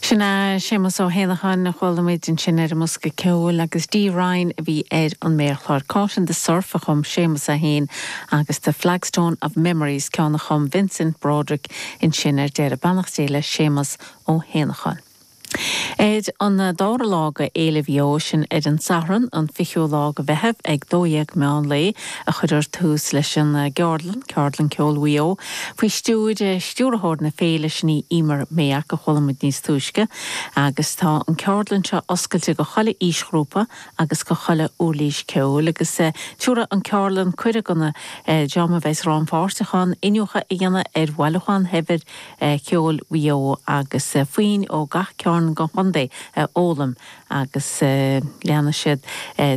Sin é Séamus Ó hÉanacháin a chuala muid ansin ar an mbosca ceoil agus Dee Ryan a bhí ar an méarchlár. Caught in the Surf a chum Séamus é féin agus The Flagstone of Memories ceann a chum Vincent Broderick ansin ar deireadh. Beannacht Dé le Séamus Ó hÉanacháin. Ar an dara lá de Fhéile Mhaigh Eo, sin ar an Satharn, an 20ú lá de Mheitheamh ag 12:00 meán lae, a chuirfear tús leis an gceardlann, Ceardlann Ceoil Mhaigh Eo, faoi stiúir Stiúrthóir na Féile sin í Emer Mayock, a chuala muid níos túisce, agus tá an ceardlann seo oscailte go chuile aoisghrúpa agus go chuile uirlis ceoil agus tabharfaidh an ceardlann cuireadh don dream a bheas rannpháirteach ann iniúchadh a dhéanamh ar bhailiúchán shaibhir cheoil Mhaigh Eo agus foinn ó gach cearn den chontae a fhoghlaim agus leanfaidh siad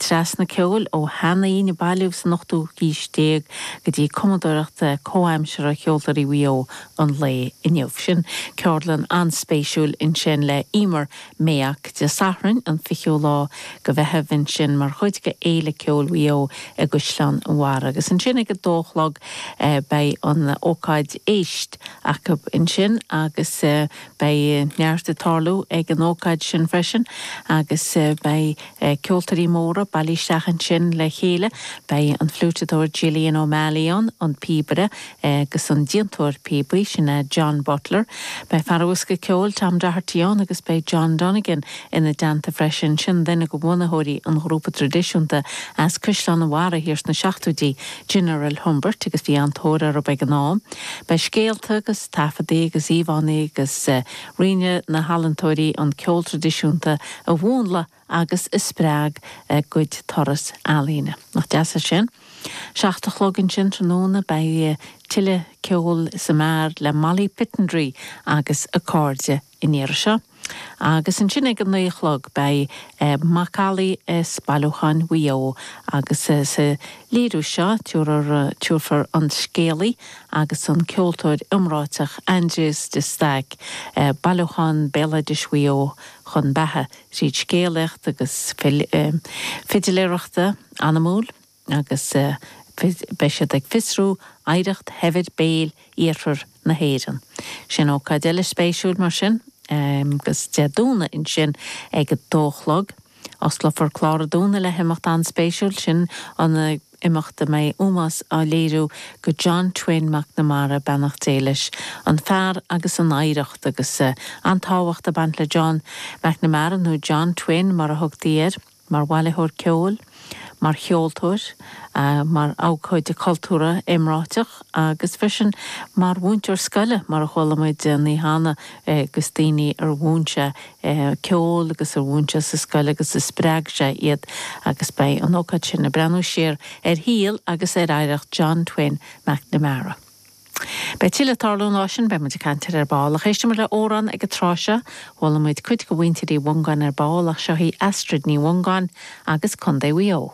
trasna ceoil ó shean-fhoinn a bailíodh san ochtú haois déag go dtí cumadóireacht comhaimseartha cheoltóirí Mhaigh Eo an lae inniu. Sin ceardlann an-spéisiúil ansin le Emer Mayock, Dé Sathairn an 20ú lá go Mheitheamh ansin mar chuid de Fhéile Ceoil Mhaigh Eo i gCaisleán an Bharraigh agus ansin ag a dó a chlog beidh an ócáid Éist acu ansin agus Beidh neart ag tarlú ag an ócáid sin freisin agus beidh ceoltóirí móra bailí isteach ansin le chéile, beidh an fliúiteadóir Jillian O'Malley ann, an píobaire agus an déantóir píobaí, sin é John Butler, beidh fear an bhosca ceoil Tom Doherty ann agus beidh John Donegan ina dteannta freisin, sin duine de bhunaitheoirí an ghrúpa traidisiúnta as Caisleán an Bharraigh thiar sna seachtóidí, General Humbert agus bhí an-tóir orthu ag an am. Beidh scéalta agus. taifeadtaí agus íomhánna agus roinnfidh na healaíontóirí an ceol traidisiúnta a mhúnlaigh agus a spreag a gcuid turas ealaíne. Nach deas é sin? Seacht a chlog ansin tráthnóna beidh tuilleadh ceoil sa mbeár le Molly Pittendrigh agus a cairde an iarraidh seo agus ansin ag a naoi a chlog beidh Macallaí is bailiúcháin Mhaigh Eo agus sa léiriú seo tabharfar an scéalaí agus an ceoltóir iomráiteach Aindrias de Staic bailiúchán béaloidis Mhaigh Eo chun beatha tríd scéalaíocht agus fidléireacht anamúil. agus beidh siad ag fiosrú oidhreacht shaibhir béil iarthar na hÉireann. Sin ócáid eile spéisiúil mar sin agus Dé Domhnaigh ansin ag a dó a chlog. Osclófar clár an Domhnaigh le himeacht an-spéisiúil, sin an imeacht a mbeidh ómós á léiriú go John Twin McNamara, beannacht Dé leis, an fear agus an oidhreacht agus an tábhacht ag baint le John McNamara, nó John Twin mar a thugtaí air. mar bhailitheoir ceoil, mar cheoltóir, mar abhcóide cultúrtha iomráiteach agus freisin mar mhúinteoir scoile mar a chuala muid Ní hAnna agus daoine ar mhúin sé ceol agus ar mhúin sé sa scoil agus a spreag sé iad agus beidh an ócáid sin ag breathnú siar ar shaol agus ar oidhreacht John Twin McNamara. Beidh tuilleadh ag tarlú an lá sin, beidh muid ag caint air ar ball, ach éistfidh muid le amhrán ag an tráth seo. Chuala muid cuid de mhuintir Uí Mhongáin ar ball, ach seo í Astrid Ní Mhongáin agus Contae Mhaigh Eo.